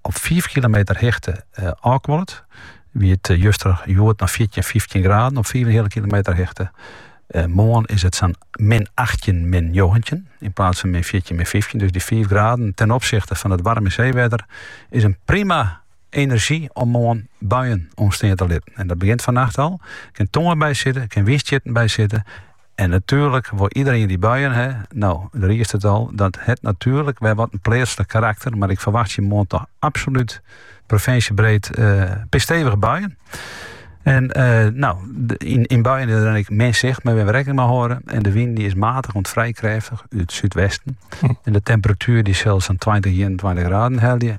op fiif kilometer hichte ôfkuolet, wie it juster, hjoed noch fjirtjin, fyftjin graden op fiif en in heale kilometer hichte. Eh, moarn is it sa'n min 18, min 19 in plaats van min 14, min 15. Dus dy 5 graden ten opsichte fan it waarme seewetter is in prima enerzjy om moarn buien ontstaan te litten. En dat begjint fannacht al. Der kin tonger by sitte, der kin wynstjitten by sitte. En natuerlik wol iedereen dy buien hè. No, de risseltaat, dat hat natuerlik wer wat in pleatslik karakter, mar ik ferwachtsje moarn toch absolút provinsjebreed fikse stevige buien. En no, yn, yn buien is der ek min sicht, moatte we rekkening mei hâlde. En de wyn dy is matig oant vrij krêftich út súdwesten. Hm. En de temperatuer dy sil sa'n 20, 21 graden helje.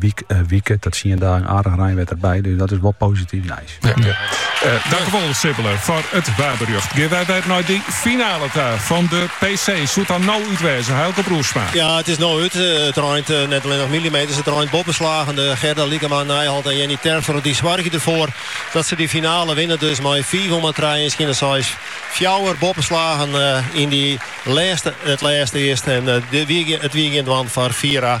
In wike tot tsien dagen aardich reinwetter by, dus dat is wol posityf nijs. Dankjewol Sibbele foar it waarberjocht. Gean wy wer nei dy finale ta fan de PC. Soe it dan no út wêze, Heilco Broersma? Ja, it is no út. It reint net allinnich milimeters, it reint boppeslagende. Gerde Lycklama à, Nijholt en Jenny Terpstra dy soargje derfoar dat se dy finale winne dus mei fiif om trije en skjinne seis. Fjouwer boppeslagen yn dy lêste, it lêste earst en it wie gjin dwaan foar Fiera.